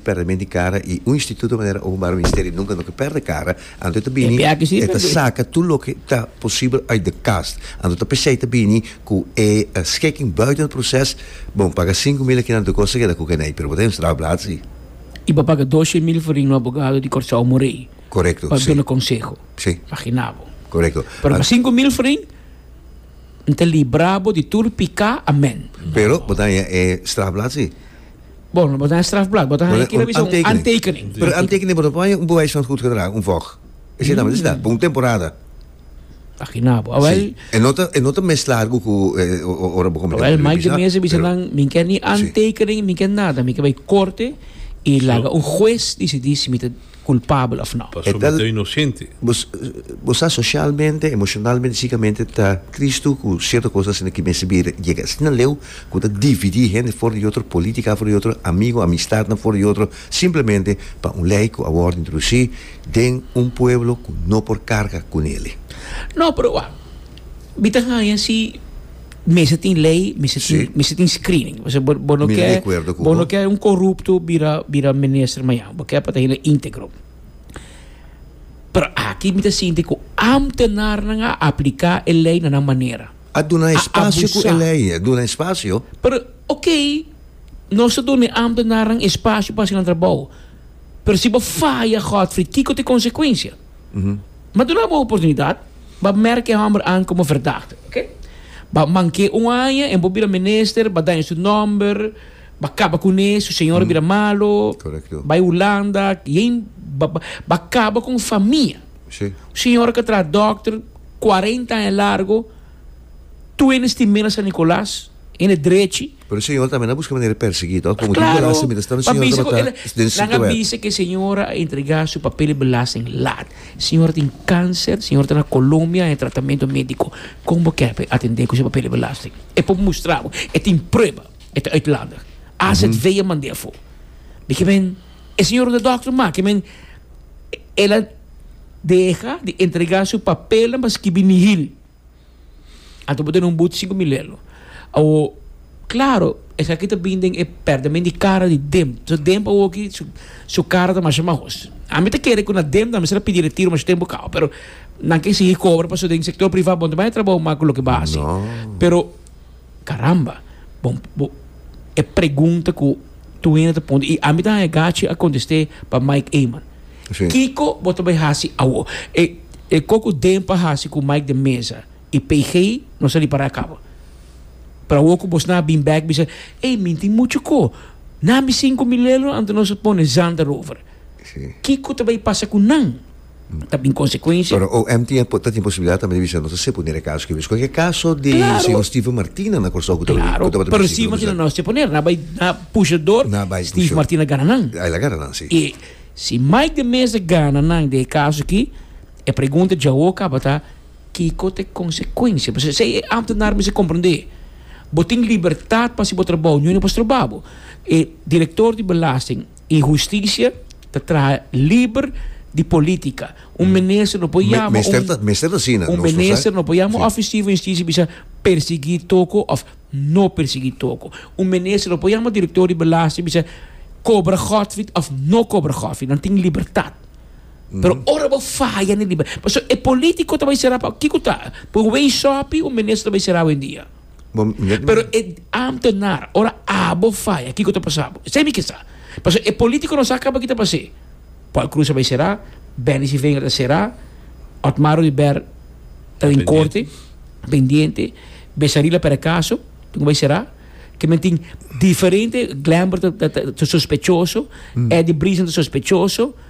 Perdement di cara y un instituto manera Open Bar Ministerio nunca no ke perde cara, anto e ta bini e ta saca tur loke ta posibel uit de kast. Anto ta p'esey ta bini cu e schikking buiten het proces, bo paga sinku mil aki na anto e cos ta keda cu keney, pero bo ta den strafblad si. Y bo paga doce mil for ring un abogado di Corsou Morey pa duna conseho, magina bo. Pero pa sinku mil for ring nta libra bo di tur pica, amen. Pero bo ta haña e strafblad si. Bon, lo bo ta haña strafblad. Bo ta haña kira mi esei, un antekening. Pero antekening bo ta por haña un bewijs van goedgedrag, un vog. Esei tambe ta cita, pa un temporada. Aki na bo. Awel. Si. E no ta, e no ta mes largo cu ora bo comete crimen pesado. Awel, maigremesa bisa nan, mi ke ni antekening, mi ke nada. Mi ke bai corte y laga un juez dicidi si mi ta. culpabel of no. Pasobra bo ta inocente. Bo sa socialmente, emocionalmente, psicamente ta cristo cu cierto cos asina ki mester bira yega asina leu cu ta dividi hende for di otro, politica for di otro, amigo, amistadnan for di otro, simplemente pa un ley cu a wordo introduci den un pueblo cu no por carga cu neli. No, pero wak. Mi ta haña si mester tin lei, mester tin, Sí. mester tin screening. O sea, bo, bo no Mi ta di ke, acuerdo cu bo bo. no ke un corrupto bira, bira minister mañana. Bo ke pa ta hende integro. Pero aki mi ta sinti cu ambtenarnan a aplica e lei na nan manera. A duna A espacio cu e abusa. lei, a duna espacio. Pero, ok, nos ta duna e ambtenarnan espacio pa haci nan trabou. Pero si bo faya, Godfrey, kico ta e consecuencia? Ba duna bo oportunidat, ba merk e hòmber an komo verdakte, ok? Ba mank'é un aña en bo bira minister, ba daña su nòmber, ba kaba kuné, su señora a bira malu, bai Hulanda, yen ba kaba kon famia. Un señora ku a traha dòkter kuarenta aña largu, tu hende stimela San Nikolas, hende drechi. Pero e señora tambe na busca manera di persegui, to? Como tin belasting mientras tanto e señora tabata den sitio wet. Nan a bisa cu e señora a entrega su papel di belasting laat. E señora tin cancer, e señora ta na Colombia en tratamento medico. Con bo ke pa atende cu su papel di belasting? E por mustra bo, e tin prueba, e ta uitlander. Azv a manda afo. Mi ke men, e señora ta dokter ma, ke men, el a deha di entrega su papelnan pa skibi nihil. Anto bo tene un but sinku mi lelo. Awo, klaro, esaki ta bin den e pèrdèment di kara di Dem. So Dem pa awoki su su kara ta masha mahos. Ami ta kere ku na Dem tambe se ta pidi retiro masha tempu kau, pero nan ke sigui kobra pasobra den sektor privá bo no ta bai a trabou mak ku loke base. Pero. Caramba, bon, bo, e pregunta cu tu hende ta ponde, y ami ta haya gachi a contesté pa Mike Eman. Sí. Kico bo ta bay haci awor? E, e coco demp a haci cu Mike den mesa y PG no sali para acaba. Pero awor cu bos na bin back bisa, ey, mi tin mucho co. Na mi cinco mil euro anto nos a pone zand erover. Sí. Kico ta bay pasa cu nan? ta bin konsekuensia. Pero OM tin por ta tin posibilidat tambe di bisa nos ta seponer e kaso kibis. Kon e kaso di señor Steve Martina na Kòrsou ku ta bai ku ta bai di presidenteKlaro, pero si no nos seponer na bai na pusha dor Steve Martina gana nan. El a gana nan si. E si Mike de Meza gana nan den e kaso aki e pregunta dja awo kaba ta kiko ta e konsekuensia. Pasobra esei e ámtenar mester komprendé. Bo tin libertat pa hasi bo trabou, ñu no por stroba bo. E direktor di belasting. Y husticia ta traha liber di politica. Un minister no por yama un un minister no por yama un oficier van justicia y bisa persegui toco of no persegui toco. Un minister no por yama un director di belasting y bisa cobra godfried of no cobra godfried. Nan tin libertad. Pero ora bo faya na e liber pasobra e politico ta bay cera pa kico ta? Pa un way shoppy un minister ta bay cera awendia? Pero e ambtenaar, ora abo faya, kiko ta pasa bo? Esei mi ke sa. Pasobra e politikonan sa kaba kita basé. Paul Croes a bai será, Benny Sylvanger ta será, Otmar Ruiber ta den korte, pendiente, Besaril a perde kaso, tin ku bai será. Ke men tin diferente, Glamber ta sospechoso, Eddie Brison ta sospechoso.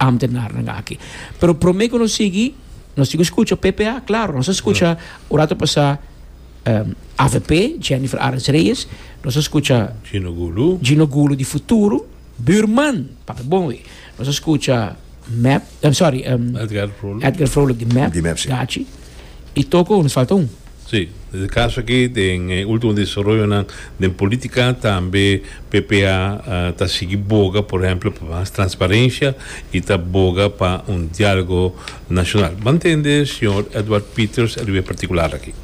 Ambtenarnan aki. Pero prome ku nos sigui, nos tin ku skucha PPA, klaro, nos a skucha un rato pasá avp, Jennifer Arends Reyes, nos a skucha Gino Gulu, Gino Gulu di Futuro, Buurman, papia bon wi, nos a skucha mep, sorry, Edgar Froluk di mep, gachi, i toko nos falta un. Sí, e kaso akí den e último desaroyonan den polítika tambe PPA ta sigui boga por ehèmpel pa mas transparensia i ta boga pa un diálogo nashonal. Bo a ntende señor Edward Peters riba e partikular akí?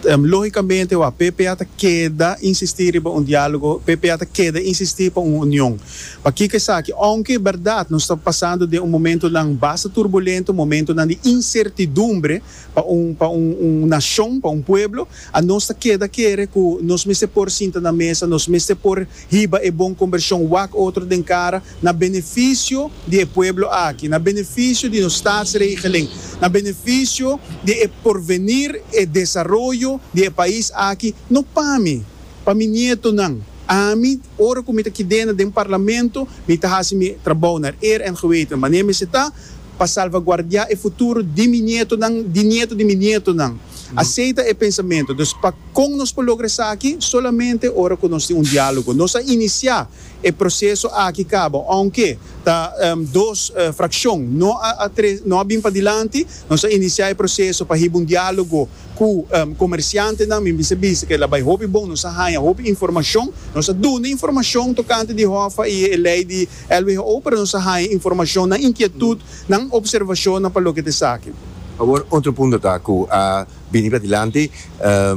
Lógikamente wak, PPA ta keda insistí riba un diálogo, PPA ta keda insistí pa un union. Pakiko esaki? Ounke e bèrdat nos ta pasando den un momentunan basta turbulento, momentunan di insertidumbre, Pa un pa un un nashon, pa un pueblo, a nos ta keda kere ku nos mester por sinta na mesa, nos mester por hiba e bon kombershon wak otro den kara na benefisio di e pueblo aki, na benefisio di nos statsregeling, na benefisio di e porvenir, e desaroyo di e pais aki, no pa mi, pa mi nietonan. Ami, ora ku mi ta kidena den Parlamento, mi ta hasi mi trabou na eer en geweten manera mi esei ta. pa salvaguardiá e futuro di mi nietonan, di nieto di mi nietonan. Asei ta e pensamentu. Dus pa kon nos por logra esaki? Solamente ora ku nos tin un diálogo. Nos a inisiá e proseso aki kaba, ounke ta dos frakshon no a tres no a bin padilanti, nos a inisiá e proseso pa hiba un diálogo ku komersiantenan. Mi mester bisa ku el a bai hopi bon, nos a haña hopi informashon, nos a duna informashon tokante di Hòfa i e lei di. El who para nos a haña informashon na inkietut nan opservashonnan pa loke ta esaki. Awor otro punto ta ku a bini pladilanti,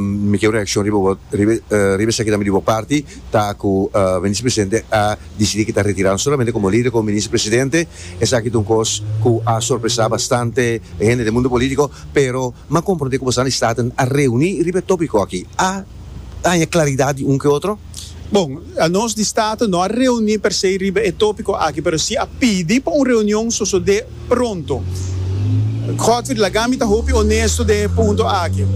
mi ker un reakshon riba bo riba esaki tambe di bo parti, ta ku Minister Presidente a disidí ku ta retirá solamente komo lider komo Minister Presidente. Esaki ta un kos ku a sorpresá bastante e hende den mundo polítiko, pero mi a komprondé ku bosnan di Staten a reuní riba e tópiko aki, a haña klaridat di un ku e otro? Bon, nos di Staten no a reuní per se riba e tópiko aki, pero sí a pidi pa un reunion sosodé pronto. Godfried, laga mi ta hopi onesto den e punto aki.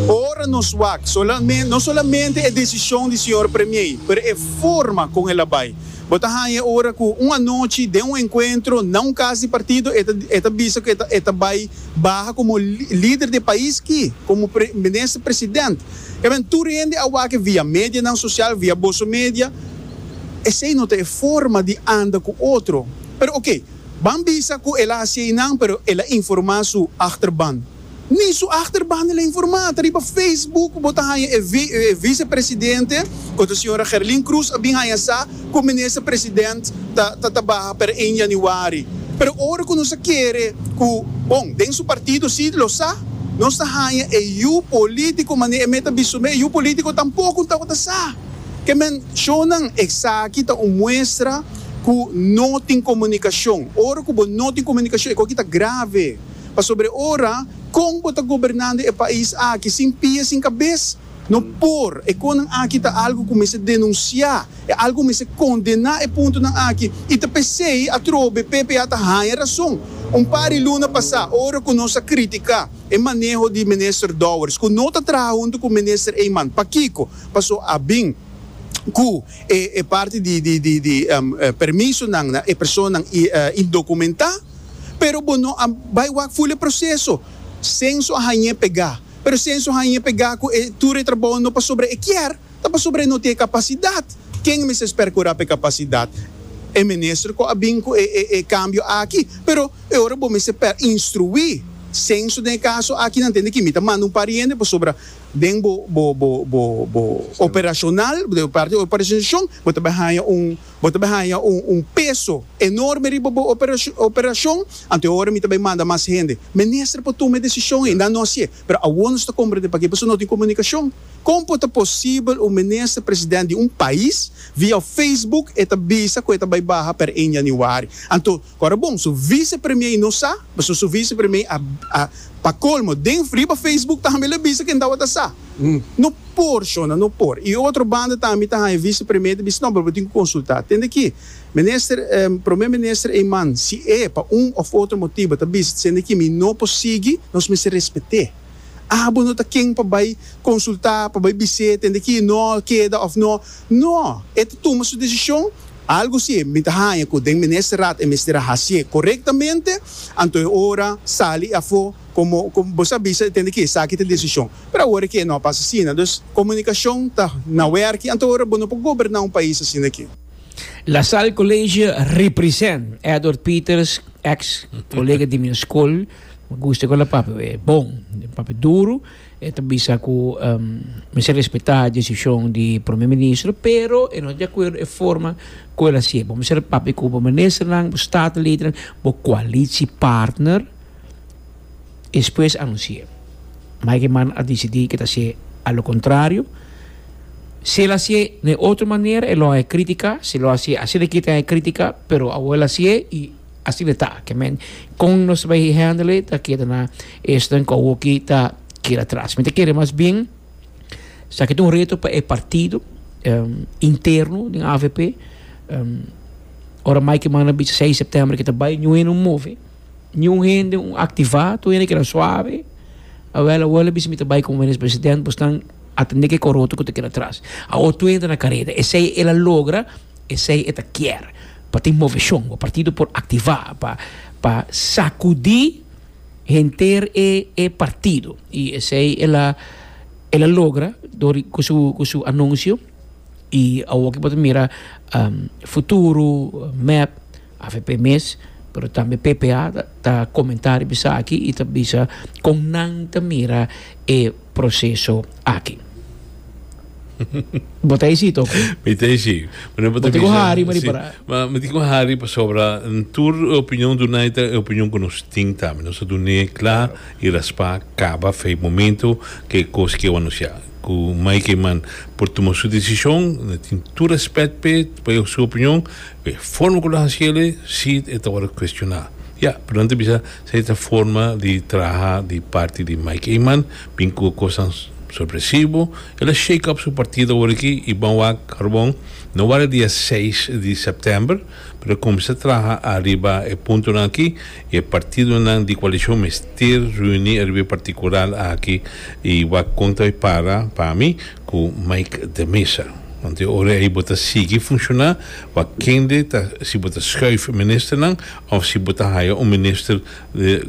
Ora nos wak, solamen, no solamente e desishon di señor Premier, pero e forma kon el a bai. Bo ta haña ora ku un anochi den un enkuentro na un kas di partido e ta e ta bisa ku e ta e ta bai, Baha komo lider di e pais ki, komo minister president. Kamen tur hende a wak e via medianan sosial, via boso media. Esei no ta e forma di anda ku otro. Pero oke, ban bisa ku el a hasi einan, pero el a informá su achterban. Ni su achterban el a informá. Ta riba Facebook ku bo ta haña e vicepresidente, ku ta señora Gerlin Cruz, a bin haña sa. Cu Minister President ta ta tabaha per ein Januari. Pero ora cu nos a kere cu, bon, den su partido si lo sa, nos ta hanja e yu politico mane e meta bisto me, e yu politico tampoco un tabata sa. Ke men shonan. Esaki ta un muestra cu no tin comunicacion. Ora cu bo no tin comunicacion e coki ta grave. Pasobra e ora, con bo ta gobernando e pais aki sin pia sin cabes? No por. E konan aki ta algu ku mester denunsiá. E algu ku mester kondená e puntonan aki. I ta p'esei atrobe PPA ta haña rason. Un par di luna pasá, ora ku nos a kritiká e maneho di Minister Dowers ku no ta traha huntu ku Minister Eman, pakiko? Pasó a bin ku e parti di permisonan na e personanan indokumentá. Pero bo no a bai wak ful e proseso. Senso a hañ'é pegá. Pero si Enzo haña pegá ku e tur e trabou no pasobra e kier, ta pasobra e no tin e kapasidat. Ken mester spera ku ra pa e kapasidat? E minister ku a bin ku e kambio aki. Pero e ora bo mester per instruí Senzo den e kaso aki, nan tende ki mi ta manda un par hende pasobra den bo operashonal, bo parti operashonalizashon, bo ta bai haña un. Bo ta bai haña un peso enorme riba bo operashon, anto e ora mi ta bai manda mas hende. Minister por tuma e desishon ei, nan no hasié. Pero awor nos ta komprendé pakiko pasobra no tin komunikashon. Kon por ta posibel un minister president di un pais via Facebook e ta bisa ku e ta bai baha per ein januari? Anto. Ora bon, su vicepremier no sa, pasobra su vicepremier a a pa colmo den riba Facebook tambe lo bisa ken tawata sa. No por, shona, no por. Y otro banda tambe ta haya vicepremier ta bisa no, pero bo tin cu consulta. Tende aki, Minister, Prome Minister Eman, si e pa un of otro motibo ta bisa tsende aki mi no por sigui, nos mester respete. Abo no ta ken pa bay consulta, pa bay bis'e tende aki no keda of no. No, e ta tuma su decision Algu si mi ta haña ku den Minister Raad e mester a hasié korektamente, anto e ora sali afó komo ku bo sa bisa tende ke esaki ta desishon. Pero awor ke no a pasa asina. Dus komunikashon ta na wèrki, anto ora bo no por goberná un pais asina ke. La Salle College represent Edward Peters ex kolega di mi skol, mi gusta ku la papia bon, papia duru. E ta bisa cu mester respeta e decision di Prome Ministro, pero e no ta di acuerdo e forma cu el a hacié. Bo mester papia cu bo Ministernan, bo Statenledennan, bo coalitiepartner y despues anuncié. Meijerman a decidi cu e ta hacié a lo contrario. Si el a hacié den otro manera, e lo a hacié critica. Si el lo a hacié asina kiet, e lo a hacié critica, pero awor el a hacié y Así lo ta, que men con nos bay handle ta keda na esto en Kouoki ta keda atras. Mi ta kere mas bien sa kit un reto pa e partido um, interno den avp um, ora Mike manda bicha seis de septiembre kita bay niun hende un move, niun hende un activa, tur hende keda suave, awel awor lo bisa mi ta bay como minister president, bos nan atende ke coroto ku ta keda atras. Awor tur hende ta na careda, esey el a logra. Esei e ta kier pa tin moveshon. Bo partido por aktivá pa pa sakudí henter e e partido. I esei el a el a logra dor ku su ku su anunsio i awoki bo ta mira futuro, mèp. Avp mes, pero tambe ppa ta comenta riba esaki y ta bisa con nan ta mira e proceso aki. Bo ta hesi toco? Mi ta hesi. Bo ta cu hari ma di para? Ma mi ta cu hari pasobra tur e opinion dunai ta e opinion cu nos tin tambe. Nos ta dun'e cla y raspa caba fey momento cu e cos cu e wou anuncia. Cu Mike Eyman por tuma su decision, mi tin tur respect p'e, pa su opinion. E forma ku lo hasiel e si e ta wòrdu kuestioná. Ya, pero nan ta bisa sa e ta forma di traha di parti di Mike Eman, bin ku kosnan sorpresivo. El a shake up su partido orekí i ban wak Karbon no wak dia seis di sèptèmber, pero e kuminsá traha ariba e puntonan akí i e partidonan di koalishon mester riuní ariba e partikular akí i wak kon ta bai para pa mi. cu Mike de Mesa. Want di ora ey bo ta sigui funciona pa kende ta si bo ta schuif ministernan of si bo ta haya un minister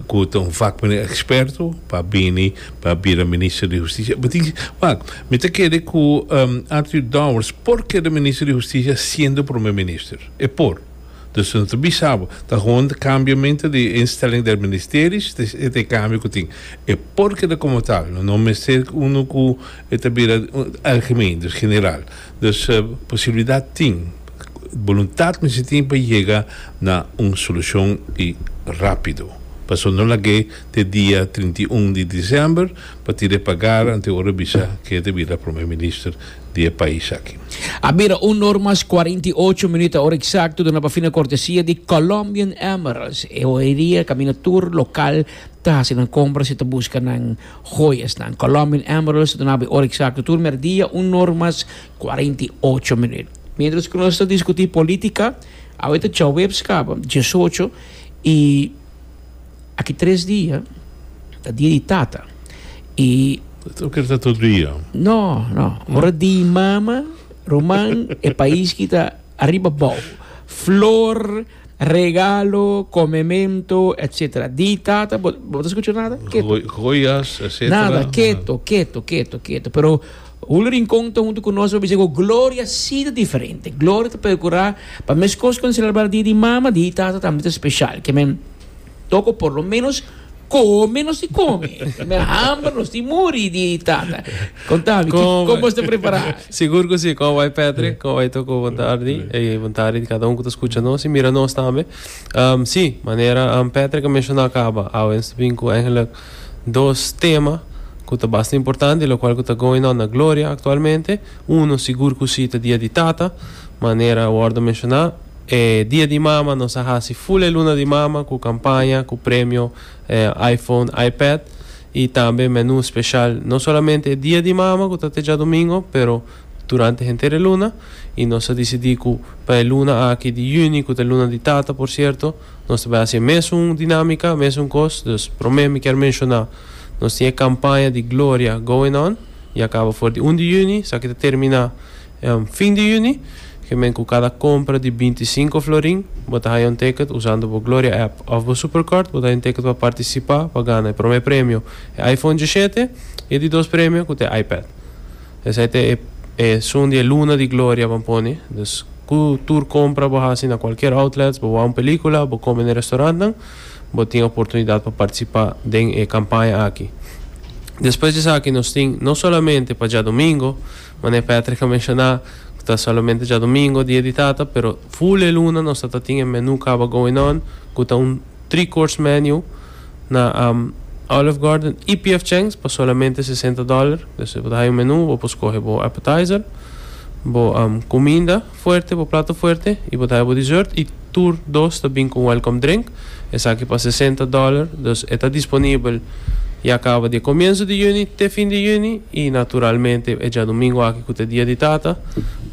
cu ta un vakmene experto pa bini pa bira minister di husticia. E bo tin wak mi ta kere cu Arthur Dowers por keda minister di husticia siendo prome minister. E por. Dus no ta bisa bo, ta hon e cambiamento di e instelling del ministerio si ta e ta e cambio cu tin. E por keda como ta, lo no mester uno cu e ta bira algemeen, dus general. Dus posibilidad tin, voluntad mester tin pa yega na un solucion y rapido. Pasobra no lag'e te dia trinta i un di december pa tira e pagar ante ora bisa ke e ta bira Prome Minister. di e pais aki. A bira un or mas cuarenta y ocho minut, ora exacto duna pa fina cortesia di Colombian Emeralds. E hoeria caminda tur local ta haci nan compras y ta busca nan hoyasnan. Colombian Emeralds ta dunaba e ora exacto tur merdia un or mas cuarenta y ocho minut. Mientras cu nos ta discuti politica, awe ta djaweps caba diesocho y. Aki tres dia ta dia di tata i Tur keer ta tur dia? No, no. Ora di mama, ruman, e pais ki ta ariba bou. Flor, regalo, comemento, etc. Di tata bo bo ta scucha nada? Keto. Joyas, etc. Nada, keto, keto, keto, keto. Pero Julio Rincon ta hunto cu nos pa bisa cu Gloria si ta diferente. Gloria ta procura pa mescos cu celebra dia di mama, di tata tambe ta special. Ke men. Toko por lo menos come nos ti come. Me hamber nos ti muri di tata. Contami, como está preparado? Seguro que sí, como vai Patrick, como vai toko buen tarde, e buen tarde cada uno que está escuchando nos y mira nos también. Um, sí, manera um, Patrick mencionó acaba, awens bin ku eigenlijk dos tema ku ta basta importante, lo cual ku ta going on na Gloria actualmente. Uno seguro que sí ta dia di tata, manera wordo mencioná. E Dia di Mama nos a hasi full e Luna di Mama cu campaña, cu premio iPhone, iPad y tambe menu special. No solamente e Dia di Mama cu ta te djadomingo pero durante henter e luna y nos a dicidi cu pa e luna aki di Juni cu ta e Luna di Tata por cierto nos ta bay haci e mesun dinamica, mesun cos. Dus prome mi kier menciona nos tin e campaña di Gloria going on y a caba for di un di Juni, esaki ta termina. En fin di Juni, kimen ku kada kompra di binti i sinku florin bo ta haña un teket usando bo Gloria app òf bo Superkort, bo ta haña un teket pa partisipá pa gana e promé premio e iPhone dishete i e di dos premio ku ta e iPad. Esei ta e e sun di e luna di gloria ban pone. Dus ku tur kompra bo hasi na kualkier outlets, bo wak un pelíkula òf bo kome n'e restorantnan, bo tin oportunidat pa partisipá den e kampaña aki. Despues di esaki nos tin no solamente pa djadumingu, Mane Patrick a menshoná ku ta solamente djadumingo Dia di Tata, pero full e luna nos ta ta tin e menú kaba going on ku ta un three course menu na Olive Garden i PF Chang's pa solamente sesenta dòler. Bo ta haya un menú, bo por skohe bo appetizer, bo kuminda. Fuerte bo plato fuerte y bo ta haja bo dessert y tur dos ta bin con welcome drink. Esaki pa sesenta dollar dus e ta disponibel ya caba di e comienzo di juni te fin di juni y naturalmente e djadomingo aki cu ta e dia di tata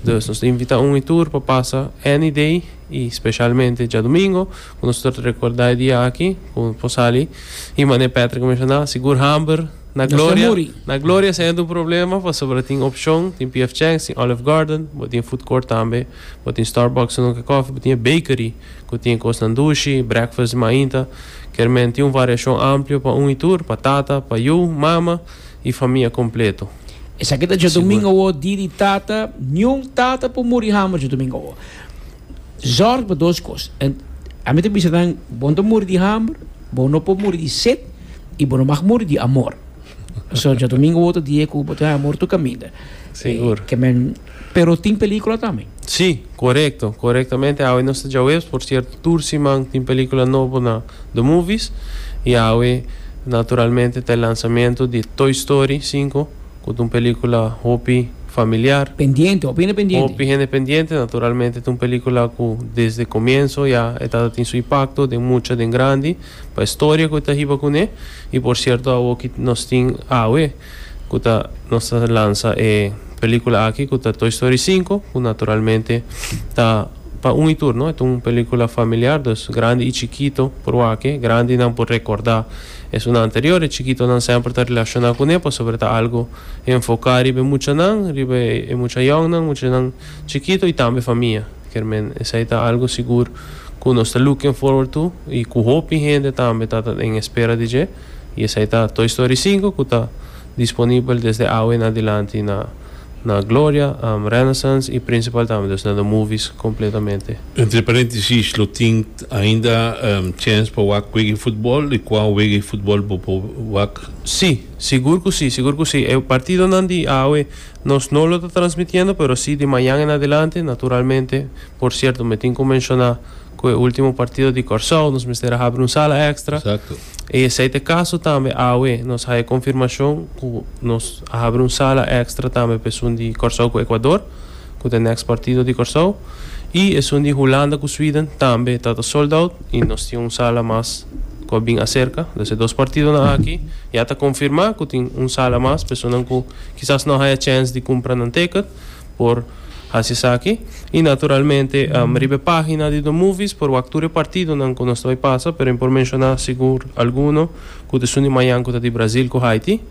dus nos ta invita un y tur pa pasa any day y specialmente djadomingo cu nos ta recorda e dia aki cu nos por sali y manera Patrick a menciona sigur hamber. Na Gloria, na Gloria si hende un problema pasobra tin opcion, tin PF Chang's, tin Olive Garden, bo tin food court tambe, bo tin Starbucks su nunca coffee, bo tin e bakery cu tin e cosnan dushi, breakfast di mainta, kermen tin un variacion amplio pa un y tur, pa tata, pa yu, mama y famia completo. Esaki ta Djodomingo awo, di di tata, niun tata por muri hama Djodomingo awo. Zorg pa dos kos. Ami ta bisa nan, Bo ta muri di hamber, bo no por muri di set i bo no mag muri di amor. Pasobra djadomingo otro dia ku bo tin amor tur kaminda. Sigur. Ke men, pero tin pelikula tambe. Sí, korekto, korektamente. Awe nos ta djaweps, por sierto tur siman tin pelikula nobo na The Movies. I awe naturalmente ta e lansamentu di Toy Story sinku. Cu t'un pelicula hopi familiar. Pendiente, hopi hende pendiente. Hopi hende pendiente, naturalmente t'un pelicula cu desde comienso ya e ta ta tin su impacto den mucha, den grandi, pa e storia cu e ta hiba cune. Y por cierto awoki nos tin awe cu ta nos ta lansa e pelicula aki cu ta Toy Story Cinco, cu naturalmente ta pa un y tur, no? E t'un pelicula familiar, dus grandi y chikito por wak e. Grandinan por recorda Esunnan anterior, e chikitonan semper ta relaciona cu ne pasobra ta algo enfoca riba e muchanan, riba e mucha yòngnan, muchanan chikito y tambe famia. Kermen, esey ta algo sigur cu nos ta looking forward to y cu hopi hende tambe ta ta den espera di dje y esey ta Toy Story Cinco cu ta disponibel desde awe en adilanti na. na Gloria, Renaissance y Principal tambe, dus na the movies completamente. Entre parentesis, lo tin ainda chance pa wak wega e futbol? Di cua wega e futbol bo por wak? Sí, sigur cu sí, sigur cu sí. E partidonan di awe nos no lo ta transmitiendo, pero sí di mañan en adelante, naturalmente. Por cierto, mi tin cu menciona cu e ultimo partido di Corsou nos mester a habri un sala extra. E esei ta e kaso tambe awe. Nos haya konfirmashon ku nos a habri un sala èkstra tambe pa esun di Kòrsou ku Ekuador, ku ta nèks partido di Kòrsou, i esun di Hulanda ku Sweden tambe ta ta sold out i nos tin un sala mas ku a bin aserka. Dus e dos partidonan aki ya ta konfirmá ku tin un sala mas pa esunnan ku kisas no a haya chèns di kumpra nan tèkèt. por hasi esaki y naturalmente riba e pagina di Domovies por wak tur e partidonan cu nos ta bay pasa pero mi por menciona sigur alguno cu ta esun di mayan cu ta di Brasil cu Haiti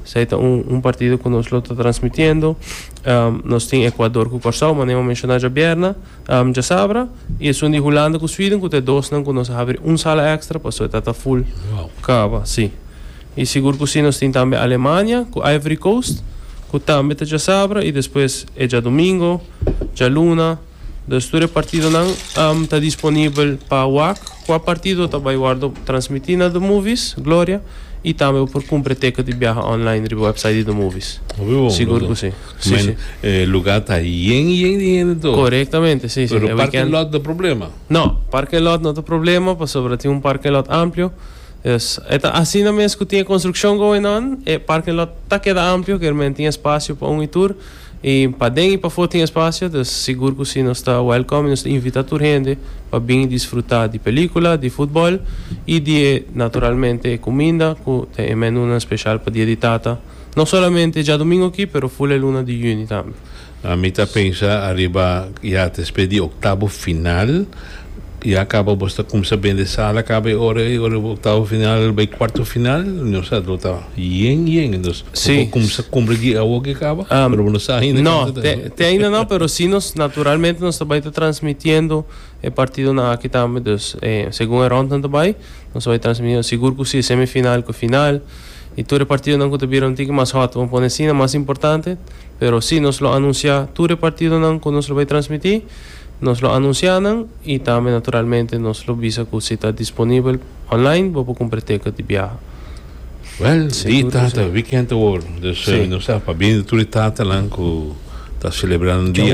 esay ta un partido cu nos lo ta transmitiendo nos tin Ecuador cu Corsow manera mi a menciona djabierna djasabra y esun di Hulanda cu Sweden cu ta e dosnan cu nos a habri un sala extra pasobra e ta ta full caba si. I sigur ku si nos tin tambe Alemania ku Ivory Coast ku tambe ta djasabra i despues e djadumingo, djaluna, dus tur e partidonan am ta disponibel pa wak ku a partido ta bai wòrdu transmití na DOmovies, Gloria, i tambe bo por kumpra e teket di biaha online riba wèpsait di DOmovies. Hopi bon, Sigur ku si. brodo. Si, si. Mean e lugá ta yen yen di hende tur. Korektamente, si, si. Pero E parking wikènt. lot ta problema? No, parking lot no ta problema pasobra tin un parking lot amplio. Yes, e ta asina mes cu tin e construccion going on. E parking lot ta keda amplio, kier men tin espacio pa un y tur. Y paden y pafo tin espacio, dus sigur cu si nos ta welcome y nos ta invita tur hende pa bin y disfruta di pelicula, di futbol y di e naturalmente e cuminda cu ta e menunan special pa dia di tata, no solamente djadomingo aki, pero full e luna di juni tambe. Ami ta pensa ariba ya ta espe di oktabo final ya kaba bo ta kumsa bende sala kaba e ora ei ora oktabo final bai kuarto final no sa lo ta yen yen entos bo kumsa kumpli di awo ke kaba pero bo no sa ainda kanta ta no te ainda no pero si nos naturalmente nos ta bai ta transmitiendo e partidonan aki tambe dus segun e rondnan ta bai nos ta bai transmitiendo sigur ku si e semifinal ku e final. I tur e partidonan ku ta bira un tiki mas hot, bo pone asina, mas importante. Pero si, nos lo anunsiá tur e partidonan ku nos lo bai transmití. Nos lo anunsiá nan i tambe naturalmente nos lo bisa ku si ta disponibel online bo por kumpra ticket di biaha. Wèl, di Tata, wikènt awor, dus nos ta pa bini tur e tatanan ku ta selebrá nan dia.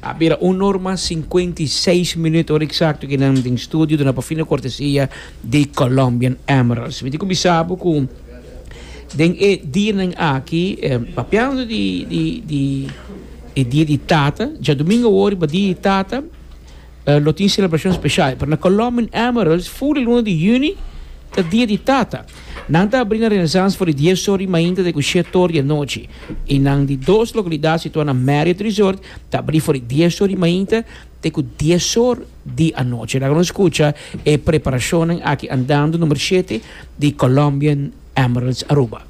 A bira un or mas sinkuenta i seis minüt, ora eksakto ki nan den studio duna pa fino kortesia di Colombian Emeralds. Mi tin ku bisa bo ku den e dianan aki, papiando di di di e dia di tata, djadumingu awor riba dia di tata, lo tin selebrashon speshal. Pero na Colombian Emeralds, ful di luna di yüni ta dia di tata. Nan ta abrí na Renaissance for di dies or di mainta te ku shet or di anochi i nan di dos lokalidat situá na Marriott Resort ta abrí for di dies or di mainta te ku dies or di anochi. Laga nos skucha e preparashonnan aki andando, Number shete di Colombian Emeralds Aruba.